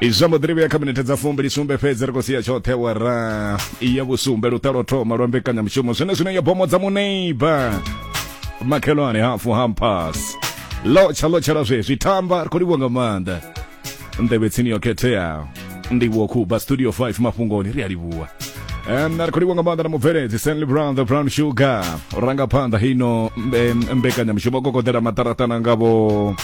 izwa mbo ḓirivhuya kha minete dza fumbili sumbe fhedzi ri khou sia tshoṱhe wara ya vhusumbe luṱalo thoma lwa mbekanyamushumo zwine zwine ya bomo dza muneiba makhelwane hafu hampas lotsha lotshela zwezwi thamba ri khou livhuwa nga maanḓa nḓevhe tsini yo khetheaho ndivhuwo khuba studio 5 mafhungoni ri a livhuwa Um, na ri khou livhuwa nga maanḓa na mubveledzi stanley brown the brown sugar rangaphanḓa hino mbe- mbekanyamushumo kokoḓela maṱaraṱana ngavho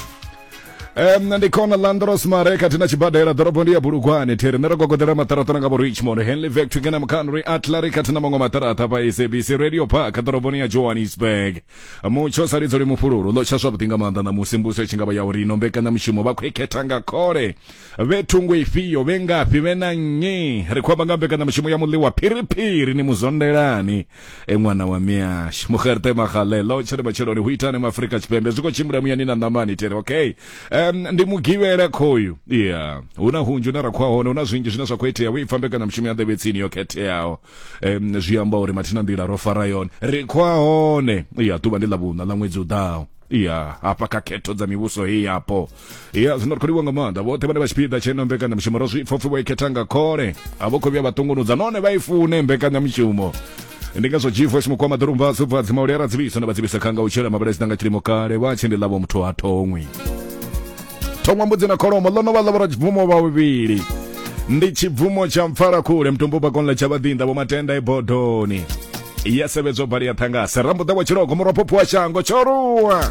Um, ndi khona landros mare kati na tshibadela ḓorobo ndi ya bulugwane thiri nṋe ro gogoḓela maṱaraṱa na nga vho richmond henley vectry kana mukhanri atlary kati na maṅwe maṱaraṱa pa sabc radio park ḓoroboni ya johannesburg mutsho sa lidzo li mufhululu ḽo tsha zwavhuḓi nga maanḓa ṋamusi mbuso i tshi nga vha ya uri ino mbekanyamushumo vha khou i khetha nga khole vhe thungo ifhio vhe ngafhi vhe na nnyi ri khou amba nga mbekanyamushumo ya muḽiwa phiriphiri ni muzondelani e ṅwana wa miyash mugerte magalelo tshere matsheloni hu itani mu afurika tshipembe zwi khou tshimbila muyani na ṋamani tere okay um, ndi mugivhela khoyu ya hu na hunzhi une ra khou hone hu na zwinzhi zwine zwa khou itea wo ipfa mbekanyamushumo ya nḓevhe tsini yo khetheaho um, zwi amba uri mathina nḓila ro fara yone ri khou hone ya ḓuvha ndi ḽa vhuṋa ḽa ṅwedzi u ḓaho ya hafha kha khetho dza mivhuso heyi yapo ya zwino ri khou livha nga maanḓa vhoṱhe vhane vha tshipiḓa tsheno mbekanyamushumo ro zwi pfopfi vho i khetha nga khole a vho khou vhuya vha ṱungunudza nahone vha i fune mbekanyamushumo ndi ngazwo gfs mukwama ḓorumba zubva dzimauli ara dzivhiso na vha dzivhisa khanga u tshela mabala dzina nga tshilimo kale vha tshi ndi ḽavho muthu ha thongwi thongwa mbudzi na kholomo ḽo no vha ḽa vhoradzibvumo vha vhuvhili ndi tshibvumo tsha mpfala khule mutumbu bakonla tsha vhaḓinḓa vho matenda e bodoni ya sevhedzwa bali ya ṱhangase rambuḓa wa tshilogo murwa phopho wa shango tshoruwa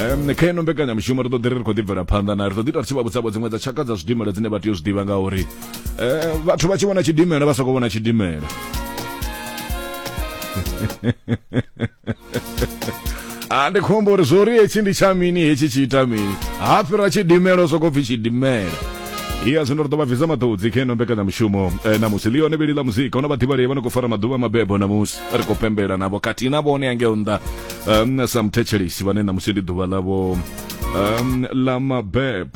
um kha ino mbekanyamushumo ri ḓo ḓi ri ri khou ḓi bvela phanḓa na ri ḓo ḓi ita ri tshi vha vhudzavho dziṅwe dza tshaka dza zwidimela dzine vha tea u zwi ḓivha ngauri um vhathu vha tshi vhona tshidimela vha sokou vhona tshidimela a ndi khombo uri zwo ri hetshi ndi tsha mini hetshi tshi ita mini ha fhira tshidimela u sokou pfhi tshidimela iya zwino ri ḓo vha bvisa maṱodzi kha ino mbekanyamushumo eh, namusi ḽi yone vhili ḽa muzika huna vhaḓivhalei vha no khou fara maḓuvha a mabebo namusi ri khou pembela navho khathihi na vhone angeo nnḓa um, sa muthetshelesi vhane ṋamusi ndi ḓuvha ḽavho um, ḽa mabeb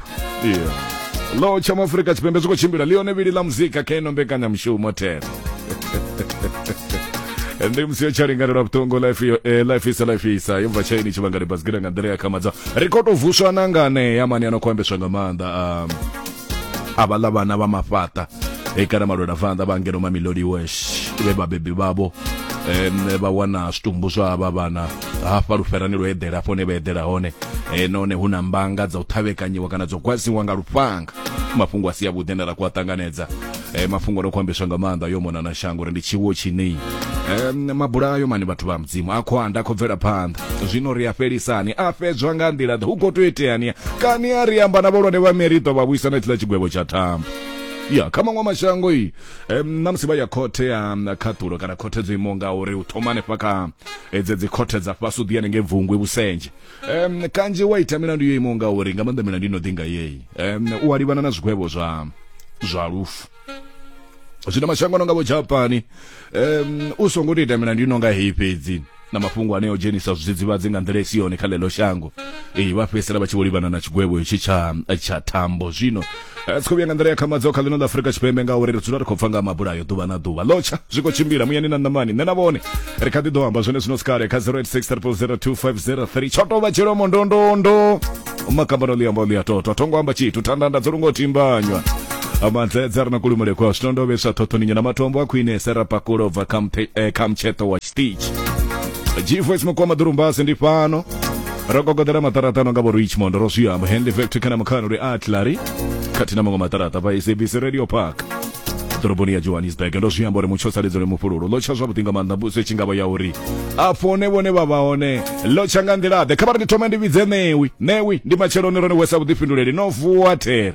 yeah. lo tsha maafurika tshipembe zwi khou tshimbila ḽione vhili ḽa muzika kha ino mbekanyamushumo thero ndi musi yo tsha linganelwa vhuṱungu life yo eh, life isa life isa yo bva tshaini tshivhangani basigira nga nḓila ya khamadza ri khou tou vuswa na nganeya mani ano khou ambeswa nga maanḓa um, avhaḽa vhana vha mafhaṱa e kana malwela vanḓa vha ngeno mamilodi wesh vhe vhabebi vhavho um vha wana zwitumbu zwa vha vhana hafha luferani lwo eḓela afho ne vha eḓela hone e, nahone hu na mbanga dza u ṱhavhekanyiwa kana dzo gwadziwa nga lufhanga mafhungo a si avhuḓi ane ra ku a ṱanganedza eh, mafhungo no khou ambeswa nga maanḓa yo mona na shango uri ndi tshiwo tshine eh, mabulayo mani vhathu vha mudzimu a khou anda a khou bvela phanḓa zwino ri a fhelisani a fhedzwa nga nḓila ḓe hu khou tou iteani kani a ri amba na vholwane vha meriḓo vha vhuisa na tshiḽa tshigwevho tsha thambo ya kha maṅwe mashango i em, na musi vha ya khothe ya mm, khaṱulo kana khothe dzo imaho nga uri u thoma hanefha kha eh, dze dzi khothe dza fhasi u ḓi hanengei bvungwe vhusenje um, kanzhi wa ita milandu yo imaho ngauri nga maanḓa milandu ino ḓi nga yeyi um, u a livhana na zwigwevho zwa zwa lufu zwino mashango no nga vho japani um, u songo tou ita milandu ino nga heyi fhedzi na mafhungo ane o dzhenisa zwidzidzivhadzi nga nḓila isi yone kha ḽeḽo shango ee vha fhedzisela vha tshi vho livhana na tshigwevho hetshi tsha tsha thambo zwino a tsi khou vhuya nga nḓila ya khamadzo kha ḽino ḽa afurika tshipembe ngauri ri dzula ri khou pfa nga mabulayo ḓuvha na ḓuvha lotsha zwi khou tshimbila muyani na ṋamani nṋe na vhone ri kha ḓi ḓo amba zwone zwino sikale kha 0863002503 tsho tou vha dzhielwa mondondondo makambano ḽi amba ḽi a totwa thongo amba tshithu thandanda dzo lungo timbanywa amanzedza ri na kulumule kwa zwino ndo vhesa thothoninya na matombo a khwine serapakulo ubva kha mtsheṱo wa tshiṱitshi g-voice mukwama ḓurumbasi ndi fhano ro kokodela maṱaraṱano nga vho richmond ro zwi amba henley factory kana mukhano ri atlary khathihi na maṅwe maṱaraṱa vha sabc radio park ḓoroboni ya johannesburg ndo zwi amba uri mutsho saledzo le mufhululo lo tsha zwavhuḓi nga maanḓa mbuso itshi ngavha ya uri a fone vhone vha vha hone lo tsha nga nḓilaḓe kha vha ri ndi thome ndi vhidze ṋewi ṋewi ndi matsheloni rone wesa vhuḓifhinduleli no vuwa there